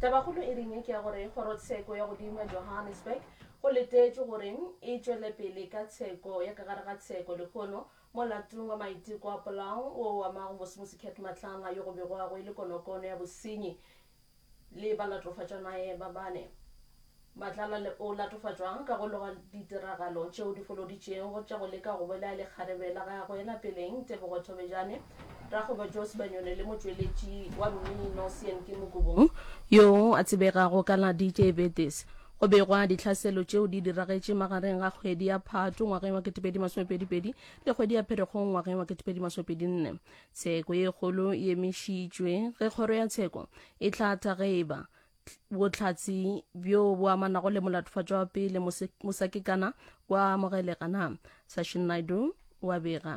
Tabakgolo e ringe ke ya gore kgorotsheko ya godimo ya Johannesburg go letetšwe gore e tšwele pele ka tsheko ya ka gare ga tsheko lehono molatong wa maiteko a polao wo o amago mosemosi Cat Matlanga yo go begwago e le konokono ya bosenyi Le ba latofatša naye ba bane. Matlala le o latofatšwa ka go loga ditiragalo tšeo di foloditšego tša go leka go bolaya lekgarebe la gagwe la peleng Tebogo Thobejane, rakgwebo Joe Sebanyoni le motšweletši wa mmino Seyanki Mokubung, yoo a tsebegago ka la DJ Betis. Go begwa dihlaselo tšeo di diragetše magareng ga kgwedi ya Phato ngwageng wa 2022 le kgwedi ya Pherekgong ngwageng wa 2024. Tsheko ye kgolo e emišitšwe ge kgoro ya tsheko e hlatha ge e ba bohlatsi bjo bo amanago le molatofatšo wa pele mosakekana wa amogelega na sashin naidu wa bega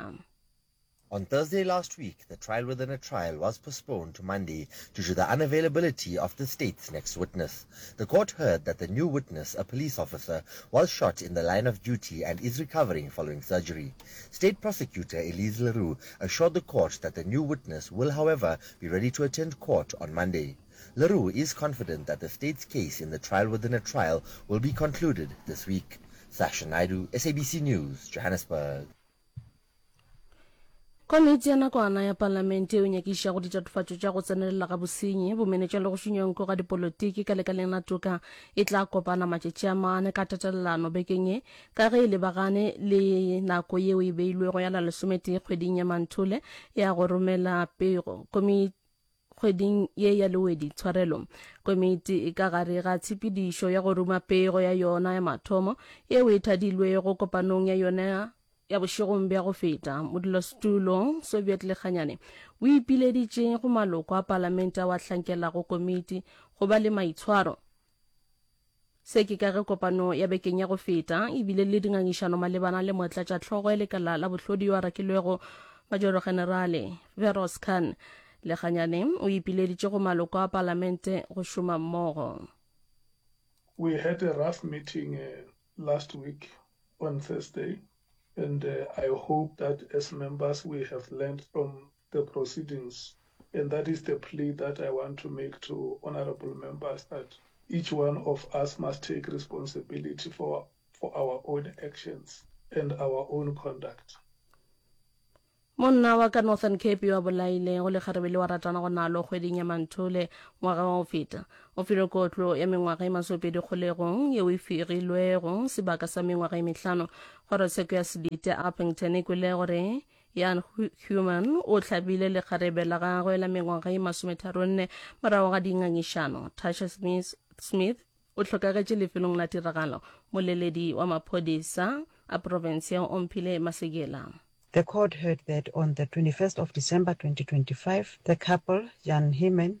On Thursday last week, the trial within a trial was postponed to Monday due to the unavailability of the state's next witness. The court heard that the new witness, a police officer, was shot in the line of duty and is recovering following surgery. State Prosecutor Elise le Roux assured the court that the new witness will however be ready to attend court on Monday. Le Roux is confident that the state's case in the trial within a trial will be concluded this week. Sasha Naidoo, SABC News, Johannesburg. Komiti ya nakwana ya palamente yeo nyakiša go ditatofatšo tša go tsenelela ga bosenyi, bomenetša le go šunyonko ga dipolotiki ka lekaleng la toka e tla kopana matšatši a mane ka tatelelano bekeng ye Ka ge e lebagane le nako yeo e beilwego ya la lesometee kgweding ya Manthole ya go romela pego, komiti kgweding ye ya lewedi tshwarelo komiti e ka gare ga tshepedišo ya go ruma pego ya yona ya mathomo yeo e thadilwego kopanong ya yona ya bošegong bja go feta modulasetulo soviet lekganyane o ipileditše go maloko a palamente ao a hlankelago komiti go ba le maitshwaro Se ke ka ge kopano ya bekeng ya go feta e bile le dingangišano malebana le motlatšatlhogo ya lekala la bohlodi yo a rakilwego majorogenerale Feroz Khan. Leganyane o ipileditše go maloko a palamente go šoma mmogo. We had a rough meeting last week on Thursday and I hope that as members we have learned from the proceedings and that is the plea that I want to make to honourable members that each one of us must take responsibility for for our own actions and our own conduct. Monna wa ka Northern Cape yo a bolaile go lekgarebe le wa ratana go nalo kgweding ya Manthole ngwaga wa go feta o filwe kotlo ya mengwaga e masopedi kgolegong yeo e firilwego sebaka sa mengwaga e mehlano kgorotsheko ya Sebite Upington e kwele gore Jan Human o hlabile lekgarebe la gagwe la mengwaga e masometharonne morago ga dingangišano. Tasha Smith, Smith o hlokagetše lefelong la tiragalo. Moleledi wa maphodisa a profense ya Omphile Masekela. The court heard that on the 21st of December 2025, the couple, Jan Human,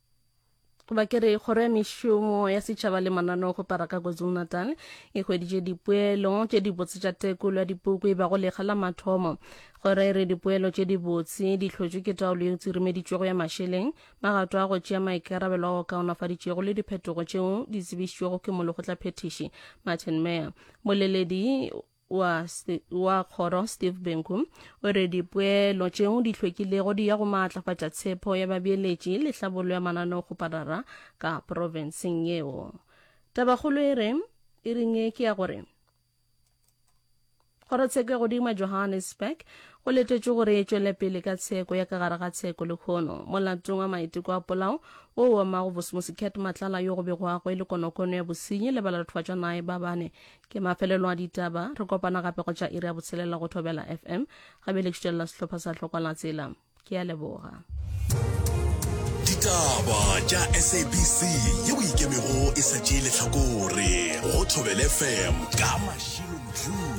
ba kere kgoro ya mešomo ya setšhaba le mananeo go paraka kwazulu-natal e hweditše dipoelo tše dibotse tša tekolo ya dipuku e bago lekga la mathomo kgoro e re dipoelo tše dibotse di hlotšwe ke taolo ye tsirimeditšwego ya mašeleng magato a go tšea maikarabelo a go kaonafaditšego le diphetogo tšeo di tsebišitšwego ke molekgotlaphethiši martin mayer boleledi wa, wa kgoro Steve Benku o re dipoelo tšeo di hlwekilego di ya go maatlafatša tshepo ya babeeletši le hlabollo ya mananeo go parara ka profenseng yeo. Tabakgolo e re e ring ye ke ya gore Kgorotsheko ya godimo ya Johannesburg go letetšwe gore e tšwele pele ka tsheko ya ka gare ga tsheko le khono molatong wa maiteko a polao wo wa mago bosmosi Cat Matlala yo go begwago e le konokono ya bosenyi le balatofatšwanae ba bane ke mafelelo a ditaba re kopana gape go tša iri ya botshelela go thobela fm gabe le kšitelela sehlopha sa tlhokwala tsela ke ya leboga ditaba tša sabc ye o ikemego e sa tšee letlhakore go thobele fm ka mašilo